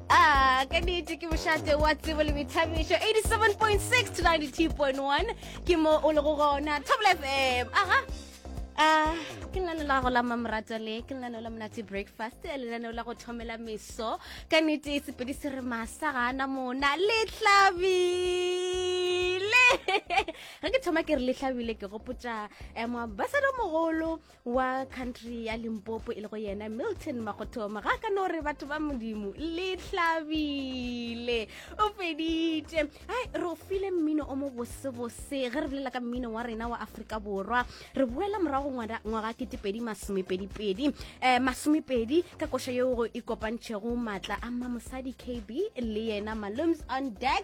Ah, ka nnete ke bošate wa tsebo le boithabišo 87.6 to 92.1 ke mo o lego gona table fm aha ah ke lenane la go la mamorata le ke lenane la monate breakfast lenane la go thomela meso ka nnete sepedi se re masa ga ana mona le tlabile ge ke thoma ke re le tlabile ke gopotsa um eh, basadi mogolo wa country ya limpopo e le go yena milton magothoma ga ka no re batho ba modimo le tlhabile o feditše ai re o file mmino o mo bosebose ge re bolela ka mmino wa rena wa aforika borwa re boela morago ngwaga ketepedi masomepedipedi um eh, masomepedi ka koša yeo go ikopantšhego maatla a mamosadi kb le yena malums on dax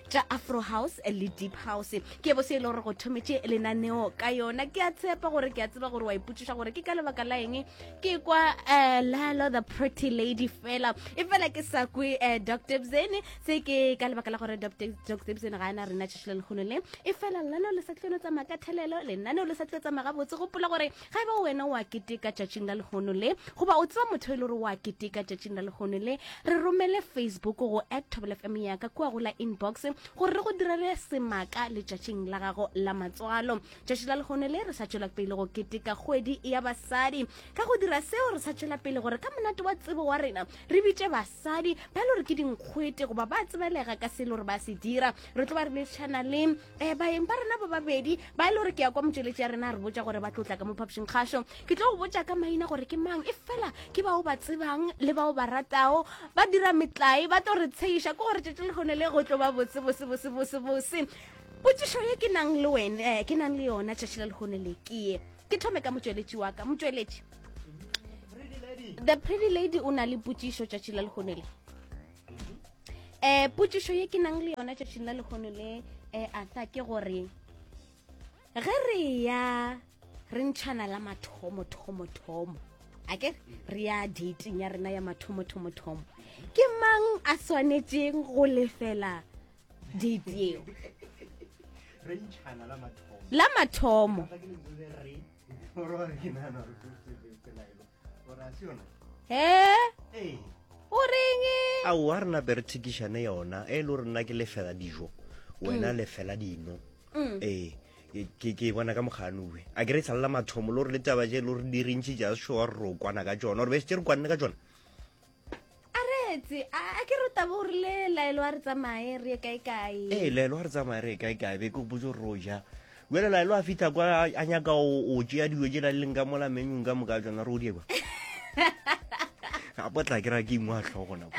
tša afro house le deep house ke bo se e le gore go thometše lenaneo ka yona ke a tshepa gore ke a tseba gore wa ipotšiša gore ke ka lebaka la eng ke kwa eh, lalo the pretty lady fela e fela ke sa kwe eh, dr bzene se ke ka lebaka la gore dr bzene ga ana rena tšhešile lekgolo le e fela lalo le sa tleno tsamaya ka thelelo lenaneo le sa tlio tsamaya gabotse gopola gore Ga e ba wena o a keteka tšatšing la lehono le, goba o tseba motho e le gore o a keteka tšatšing la lehono le, re romele Facebook go at Thobela FM ya ka kua go la inbox gore re go direle semaka letšatšing la gago la matswalo. Tšatši la lehono le re sa tšwela pele go keteka kgwedi ya basadi. Ka go dira seo re sa tšwela pele gore ka monate wa tsebo wa rena re bitše basadi ba e le gore ke dinkgwete goba ba tsebelega ka se e le gore ba se dira re tlo ba re lešana le um baeng ba rena ba babedi ba e le gore ke ya kwa motšweletši ya rena a re botsa gore ba tlotla ka mo phapošing kgašo ke tlo go botsa ka maina gore ke mang e fela ke bao ba tsebang le bao ba ratago ba dira metlae ba tlo re tsheiša ke gore tšatši le gone le go tlo ba botse bose bose bose bose potsišo ye ke nang le wene eh, ke nang le yona tšatši la legone le kee ke thome ka motšweletši wa ka motšweletši the pretty lady o na le potsišo tšatši la legone le eh putsišo ye ke nang le yona tšatšing la lekgono le eh atha ke gore ge re ya re ntšhana la mathomo thomo thomo a ke re ya dating ya rena ya mathomo thomo thomo ke mang a swanetseng go lefela date eo la mathomo he o reng ao a rena be re thekišane yona e le rena ke lefela dijo wena mm. lefela dino mm. ee ke ke bona ka moganoe a ke re tshalla mathomo lo re le taba je lo re di rintši ja sure ro kwana ka tsona re be se re kwanne ka tsona a retse a ke re tabo gore le laelo a re tsamaye re ye kae kae ee laelo a re tsamaye re ye kae kae be ke gopotse gore o ja wele laelo a fitlha kwa a nyaka o tšea dilo tse la leng ka mola menyong ka moka tsona re o diekwa a potla ke ra ke ingwa tlhogo nako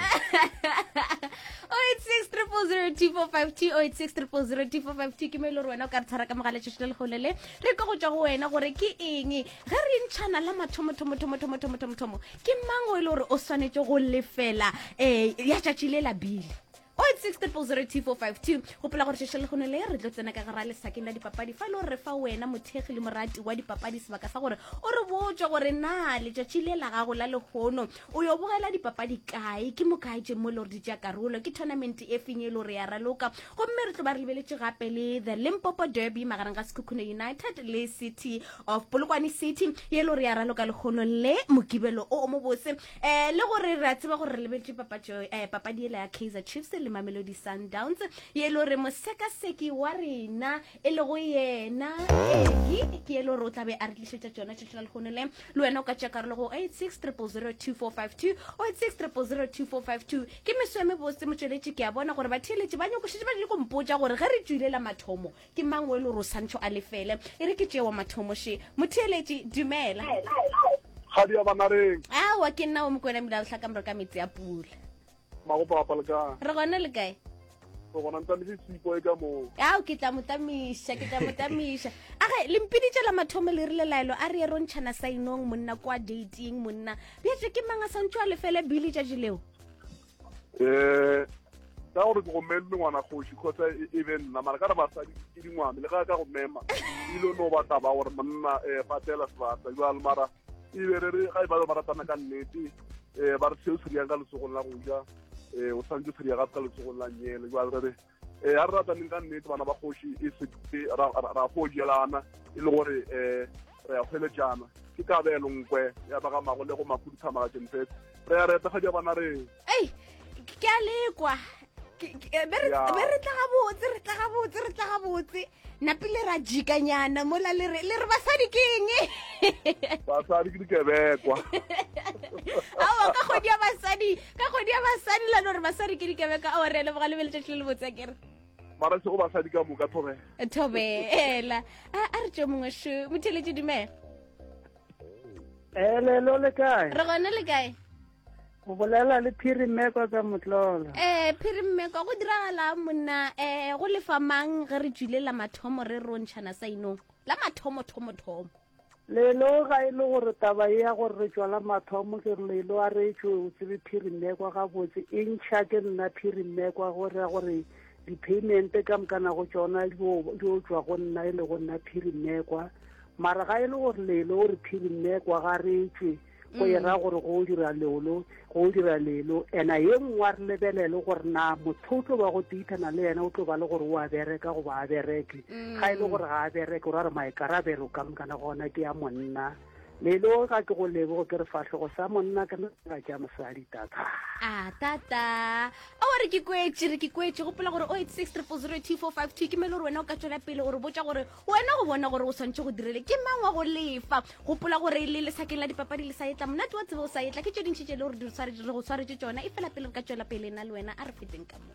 0802452 ke mo e le gore wena o ka re tshwara ka mogaletšešo le legolele re ka go tšwa go wena gore ke eng ge re ntšhana la mathomothomothomothomothomothomothomo ke mang o e le gore o swanetše go lefela um ya tšatši le labile 086000242 gopola gore šešo legono le re tlo tsena ka gara lesakeng la dipapadi fa e le gore re fa wena mothekgi le morati wa dipapadi sebaka sa gore o re botse gore na letšatši le la gago la legono o yo bogela dipapadi kae ke mokae tše mo e le gore di tšea karolo ke tournament e feng e le gore ya raloka gomme re tlo ba re lebeletše gape le the limpopo derby magareng ga sekhukhune united le city of polokwane city ye lo re ya raloka lekgono le mokibelo o o mobose um le gore re a tseba gore re lebeletse papatso um eh, papadi ela ya kaizer chiefs le mamelodi sundowns ye le gore mosekaseki wa rena e lego yena eki ke ye le gore o tlabe a re tlišetša tsona tšatši la lekgono le le wena o ka tšea karolo go 86 002452 86 002452 ke meso ya mebose motsweletši ke a bona gore batheeletši ba nyokošetše ba dile kompotša gore ge re tswilela mathomo Ke mang o e le gore o santšho a lefele? E re ke tšeo mathomo še. Motheeletši, Dumela. Kgadi ya Banareng. Aowa, ke nna o Mokwena Mmila Letlha ka ka metsi a pula. Magopa wa palekang. Re gona le kae? Re gona ntamile sipo e ka moo. Ao ke tla motamiša, ke tla motamiša. Age le mpiditše la mathomo le rile laelo a re erontšhana sainong monna kwa dating monna. Bjetse ke mang a santšho a lefele bile tšatši leo? um ka gore ke go meme ngwana kgoši kgotsa e, e be nna mara ka re basadi ke dingwane le ga ka go mema ile no ba taba gore monna um eh, patela sebata jale mara ebe re re ga e ba ba ratana ka nnete um ba re seo se riyang ka letsogong la go ja um o tshwanetse se riya gape ka letsogong la nyele jale re re um a re rataneng ka nnete bana ba kgoši e se ra go jelana e le gore um re ya hweletšana ke kabelo nkwe ya ba ga mago le go makhuduthamaga jenfetse re ya re etagadi ya bona re ei ke a lekwa be re tla gabotse re tla gabotse re tla gabotse napile ra jikanyana mola le re le re basadi ke eng basadi ke dikebekwa aowa ka kgodi ya basadi ka kgodi ya basadi la no re basadi ke dikebekwa aowa re leboga le be letšatši le le botsa kere mara sego basadi ka moka thobela thobela a re tšo mongwe sho motheletše dumela elelo le kae re gone le kae go bolela le phirimmeko ka motlolo ee phirimmeko go diragala monna ee go lefa mang ge re tswile la mathomo re rontšhana sainong la mathomo thomo thomo lelo ga e le gore taba e ya gore re tswa la mathomo ke re lelo a re tswe o tsebe phirimmeko gabotse e ntšha ke nna phirimmeko a gore ya gore di-paymente ka mokana go tsona di o tswa go nna e le go nna phirimmekwa mara ga e le gore lelo o re phirimmekwa ga re tswe go e ra gore go dira leolo go dira lelo ena ye nngwe a re lebelele gore na motho o tlo ba go teithana le yena o tlo ba le gore o a bereka goba a bereke mm. ga e le gore ga a bereke o ra re maikarabelo ka mokana gona ke ya monna lelo ga ke go lebogo ke re fatlhogo sa monna ke nna ja mosadi tata a tata a wa re ke kwetse re ke kwetse gopola gore o eight six triple zero two four five two ke mele gore wena o ka tswela pele gore botsa gore wena go bona gore o swantšhe go direle ke mang wa go lefa gopola gore le lesakeng la dipapadi le sa etla monate wa tsebe o sa etla ke tše dintšhi tše le gore re go swaretše tšona e fela pele re ka tšwela pele na le wena a re feteng ka moo